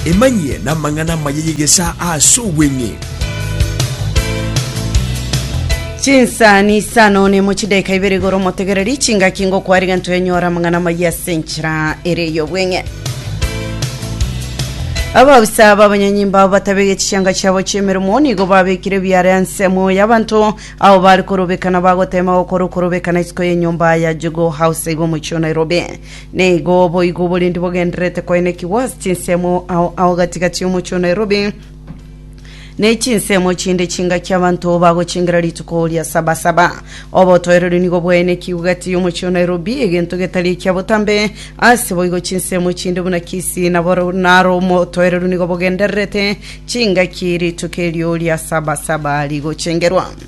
Emanyie namang'ana amaya y'egesaa ase obweng'e. chinsani saa none mo chidaika ibere igoro motegereri chingaki ngokwari gento enyora amang'ana amaya ase enchera ere ey'obweng'e ababisa b'abanyanyimba abo batabege chianga chiabo chi'emeremo nigo babekire biare ensemo y'abanto abo bari korobekana bagotema gokora okorobekana isiko y'enyomba ya jugo house igwo omochio nairobi Nigo boigo oborendi bogendererete koenekigwa ase chinsemo ao ao gati-gati y'omochie o Nairobi, ne chinsemo chinde chingaki abanto bagochingera rituko ria Sabasaba. Obotoereru nigo bwaenekigwe gati y'omochie o Nairobi, egento getari ekia botambe. Ase boigo chinsemo chinde buna Kisii na Boro naro omotoereru nigo bogendererete chingaki rituko erio ria Sabasaba rigochengerwa.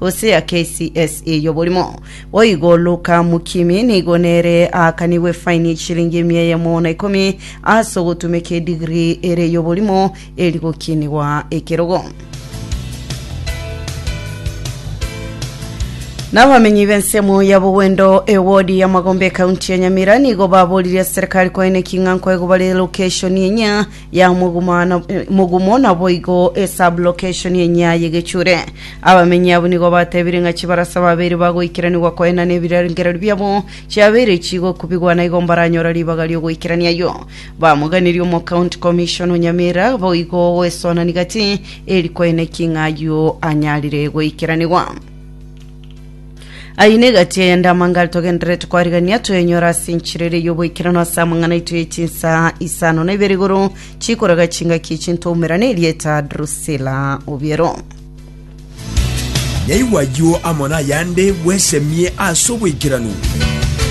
Hosea KCSE y'oborimo o igo Luka Mukimi nigo nere aakanigwe efaini y'eshilingi emia eyemo na ikomi ase ogotumeka edigiri ere y'oborimo eri gokinigwa ekerogo. N'abamenyi b'ensemo ya Bogwendo ewodi ya Magombe ekaunti ya Nyamira nigo baboririe serikali koeneki ng'a nkoegwa bare lokeshoni enyia ya omogumano mogumo naboigo esublocation enya yegechure abamenyi abo nigo batebire ng'a chibarasa babere bagoikeranigwa koenana ebirengererio biabo chiabere chigokubigwa naigo mbaranyora ribaga riogoikerania yo bamoganirie omo county commission o nyamira boigo gwesonani gati eri koeneki ng'a ayio anyarire goikeranigwa Ayio negati eyende amangare togendererete kwarigania twenyora ase enchera ere y'oboikeranu ase amang'ana aito ye chinsa isano na ibere igoro chikoraga chingaki echinto oumera na erieta Drusilla Obiero. Naigwa ayio amo nayande bwesemie ase oboikeranu.